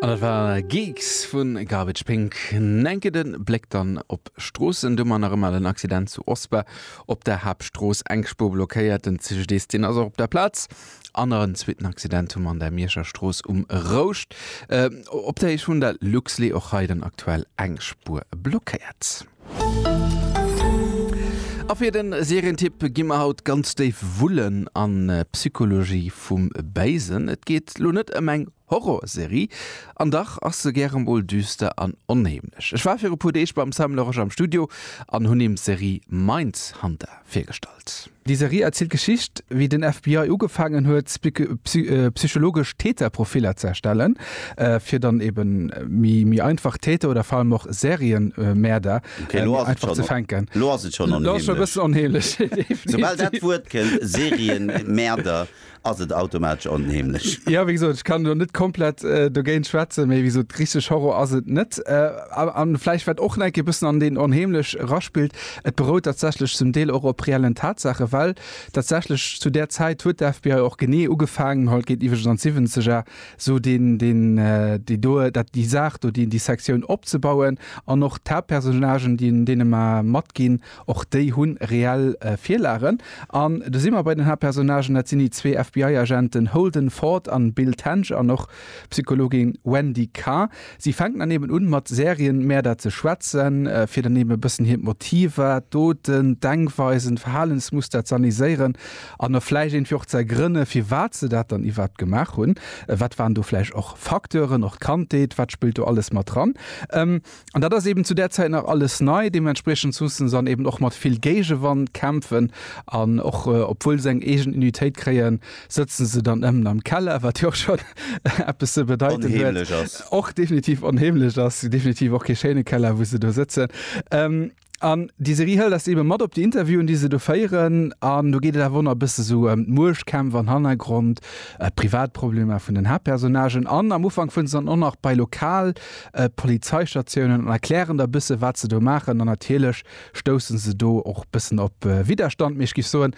An dat war Geeks vu Garbage Pink. En enke Bléck dann op d'Stroossen, domat nach ëmmer den Accident zu Osper op der Haaptstrooss, eng Spuer blockéiert. Den CGDIS, deen ass och op der Plaz. An nach en zweeten Accident hu mer an der Mierscher Strooss um Rouscht, op der Héicht vun der Luxlait. Och hei dann aktuell eng Spuer blockéiert. A fir de Serientipp gi mer haut ganz déif wullen an d'Psychologie vum Béisen. Et geet elo net ëm eng Horrorserie, an dach ass se gäre mol düster an onheemlech. Ech war viru puer Deeg beim Sam Loresch am Studio an hunn him d'Serie Mindhunter virgestallt. Déi Serie erzielt d'Geschicht, wéi den FBI ugefaangen huet, psychologesch Täterprofiller ze erstellen, fir dann ebe méi einfach Täter oder vor allem och Serienmäerder méi einfach ze fänken. Lo ass et schonn onheemlech. Soubal dat Wuert kënnt, Serienmäerder, ass et automatesch onheemlech. Jo, wéi gesot, ech kann elo net komplett dogéint schwätzen, mee wéi gesot, richteg Horror ass et net. A vläicht wat och nach e bëssen an deen Onheemlech eraspillt, et berout tatsächlech zum Deel och op reellen Tatsaachen, well tatsächlech zu där Zäit huet d'FBI och genee ugefaangen, haut geet iwwregens an d'Siwwenzeger, esou deen, deen, déi do, dat, déi Saach do, déi, déi Sektioun opzebauen an och d'Haaptpersonnagen, déi, deene mer matginn, Och déi hu reell Virlagen. An do si mer bei den Haaptpersonnagen, dat sinn déi zwee FBI-Agenten Holden Ford an Bill Tench an och d'Psychologin Wendy Carr. Si fänken dann eben un, mat Serienmäerder ze schwätzen, fir dann eben e bëssen hiert Motiver, d'Doten, d'Denkweisen, d'Verhalensmuster z'analyseieren an da vläicht iergendwéi och z'ergrënne firwat se dat dann iwwerhaapt gemaach hunn. Wat waren do vläicht och Facteuren? Och d'Kandheet, wat spillt do alles mat dran? An dat ass eben zu där Zäit nach alles nei. Deementspriechend mussen se an eben och mat vill Géigewand kämpfen. An och obwuel se eng eegen Unitéit kréien, sëtzen se dann ëmmen am Keller, wat jo och schonn eppes ze bedeiten huet. Onheemlech ass. Och definitiv onheemlech ass. Definitiv och kee schéine Keller, wou se do sëtzen. An déi Serie hëlt eis eebe mat op déi Interviewen, déi se do féieren. An do geet et awer och nach e bësse sou ëm d'Muechtkämpf an Hannergrond, d'Privatproblemer vun den Haaptpersonnagen. An am Ufank fueren se dann och nach bei lokal Polizeistatiounen an erklären da bësse wat se do maachen. An natierlech stousse se do och bëssen op Widderstand, mee ech géif soen,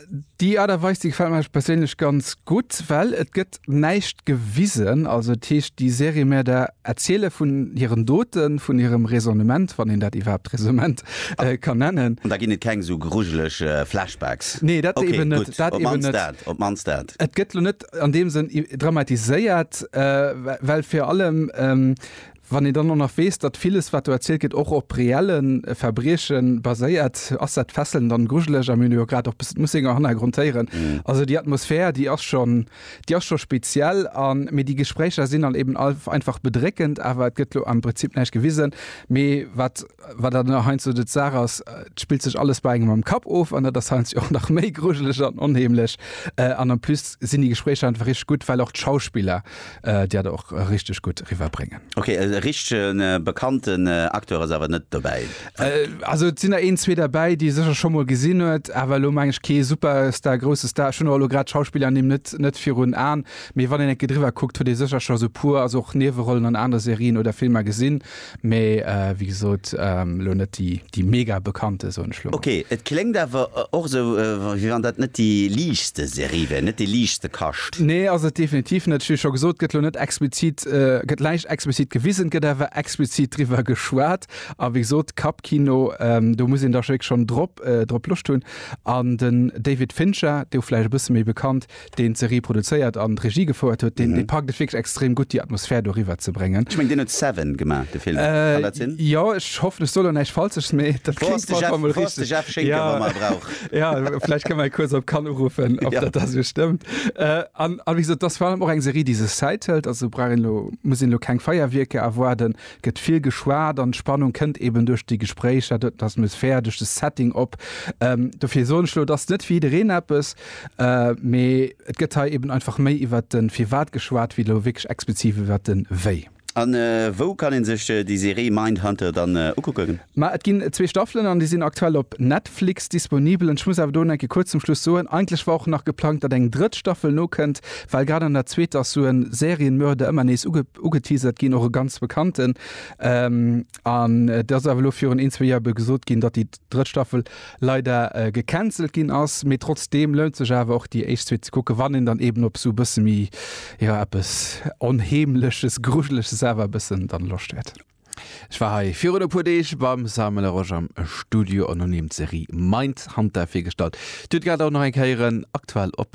Déi Art a Weis, déi gefällt mer perséinlech ganz gutt, well et gëtt näischt gewisen. Also et heescht, déi Seriemärder erziele vun hiren Doten, vun hirem Raisonnement, wann een dat iwwerhaapt Raisonnement ka nennen. An da ginn et keng esou grujeleg Flashbacks? Nee, dat eben net. Okay, gutt. Op d'mannst dat, op d'mannst dat. Et gëtt lo net an deem Sënn dramatiséiert, well virun allem Wann een dann och nach weess, datt villes, wat do erzielt gëtt, och op reelle Verbrieche baséiert, ass dat fesselnd an grujeleg. A mir hunn jo grad och bëssen d'Mussinger Hannergrond héieren. Also déi Atmosphär, déi ass schon, déi ass scho speziell. An, mee déi Gespréicher sinn dann eben einfach bedréckend. Awer et gëtt elo am Prinzip näischt gewisen, mee wat. Wat dat nach heiansdo de d'Saach ass, et spillt sech alles bei engem am Kapp of an dat ass heiansdo och nach méi grujeleg an onheemlech. An en plus sinn déi Gespréicher einfach richteg gutt, well och d'Schauspiller dat och richteg gutt riwwerbréngen. Ok, e richtege bekannten Acteur ass awer net dobäi? Also et sinn der een, zwee derbäi, déi ee sécher scho mol gesinn huet, awer elo meng ech kee Superstar, grousse Star. Ech hunn och elo grad d'Schauspillernimm net, net virun Aen, mee wann een enke driwwer kuckt, huet ee sécher scho esou e puer, also och Niewerollen an anere Serien oder Filmer gesinn. Mee wéi gesot elo net déi mega bekannte, soen ech elo mol. Okay, et kléngt awer och esou, wéi wann dat net déi liichtste Serie wär, net déi liichtste Kascht. Nee, ass et definitiv net. Ech hu scho gesot, gëtt elo net explizit, gëtt näischt explizit gewisen, gëtt awer explizit driwwer geschwat. A wéi gesot, Kappkino, do muss een da wierklech schonn drop Loscht hunn. An den David Fincher, dee vläicht e bësse méi bekannt, deen d'Serie produzéiert an d'Regie gefouert huet, deen dee packt et wierklech extrem gutt déi Atmosphär do riwwer ze bréngen. Ech mengen deen huet Seven gemaach, de Film, kann dat sinn? Äh jo, ech hoffen ech soen elo näischt Falsches, mee dat Wou ass kléngt de op alle Jeff, Fall mol wou ass de richteg. Jeff Schinker, Jo, wann mer e brauch? jo, vläicht kënne mer e kuerz op Cannes uruffen, ob dat da sou stëmmt. Äh an a wéi gesot, et ass virallem och eng Serie, déi sech Zäit hëlt, also brauch een elo, muss een elo keng Feierwierker erwaarden. Et gëtt vill geschwat an d'Spannung kënnt eeben duerch déi Gespréicher, duerch d'Atmosphär, duerch de Setting op. Dofir soen ech elo, et ass net fir jiddereen eppes, Mee et gëtt hei eben einfach méi iwwert de Firwat geschwat, wéi elo wierklech expliziv iwwert de Wéi. A wou kann een sech déi Serie Mindhunter dann ukucken? Ma et ginn zwee Staffelen an déi sinn aktuell op Netflix disponibel. An ech muss awer do enke kuerz zum Schluss soen, eigentlech war och nach geplangt, datt eng drëtt Staffel nokënnt, well grad an der zweeter ass sou e Serienmörder ëmmer nees ugeteasert ginn, och e ganz bekannten. An et ass awer elo virun een, zwee Joer ebe gesot ginn, datt déi. drëtt Staffel leider gecancelt ginn ass, mee trotzdeem lount sech awer och déi éischt zwee ze kucken, wann een dann eben op esou e bësse méi, jo, eppes Onheemleches, Grujeleches awer e bëssen dann Loscht huet. Ech war hei virun e puer Deeg beim Samuel Laroche am Studio an hunn him d'Serie Mindhunter virgestallt. Dir hutt grad och nach eng Kéier en aktuell op.